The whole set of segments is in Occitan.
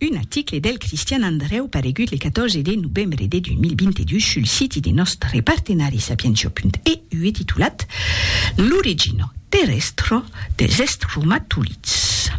Un aticle del Cristian Andrèu paregut le 14 de novembre de 2022 sul siti de nòstre partenari Sapientia.eu e titulat L'origina terrèstra dels estromatolids,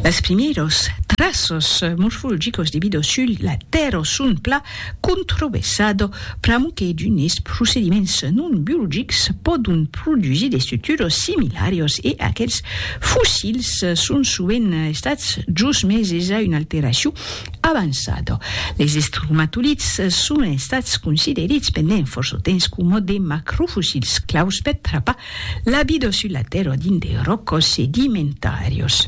las primièras traças morfologicas de vida sul la Tèrra son plan Controversat pr'amor que d'unes procediments non biologics pòdon produsir de suturos similarios e aquels fossils son sovent estats josmeses a una alteracion avançada. Les estromatolids son estats considerits pendent fòrça temps coma de macrofossils claus per trapar la vida sus la tèrra dins de ròcas sedimentàrias.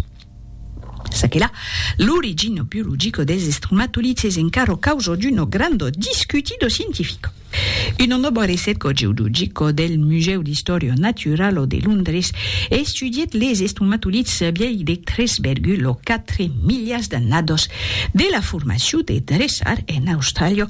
Ça que la, l'origino biologico des estromatolids es encaro causo d'uno grando discutido scientifico. Uno nobo recerco geologico del Museu d'Historio Naturalo de Londres estudièt les estromatolids vièlhs de 3,4 miliars d'annados de la formacion de Dressar en Austràlia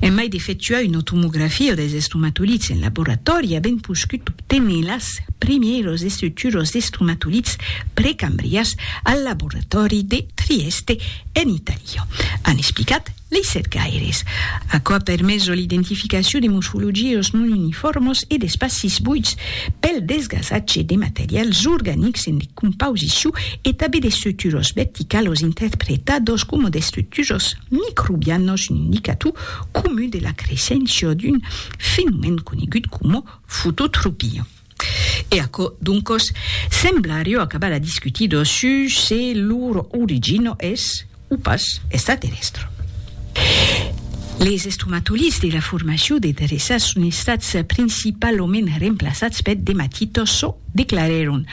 En mai d'efectuar una tomografia dels estomatolits en laboratòri, avèm poscut obténer las primièras estructuras d'estomatolits precambrians al laboratòri de Trieste, en Itàlia, an explicat lei cercaires. Aquò a permeso l'identificacion de mosfologias non unifòrmas e d'espacis buits pel desgasatge de materials organics en decomposicion e tanben d'estructuras verticalas interpretadas coma d'estructuras microbianos un indicator comun de la creisséncia d'un fenomèn conegut coma fototropia. E aquò, doncos, sembla arreu acabar a discutir dos sus se lor origina es, o pas, extraterrèstra. Les estomatolits de la formacion de dreças son estats principalament remplaçats peth dematitòso, declarèron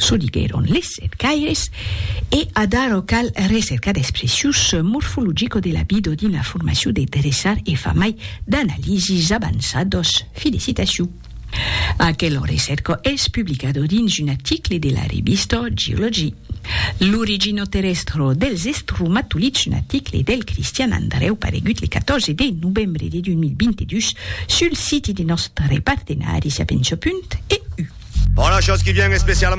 Çò diguèron les cercaires, e ad'arò cal recercar d'expressius morfologico de labido dins la formacion de dreçar e far mai d'analisis avançados. Felicitacion! Aquel recerco es publicado dins un article de la revista Geology. L'origino terrestro dels estromatolids un article del Cristian Andrèu paregut le 14 de novembre de 2022 Sul siti de nòstre partenari Siapensopunt EU. Bon, la chose qui vient especialement.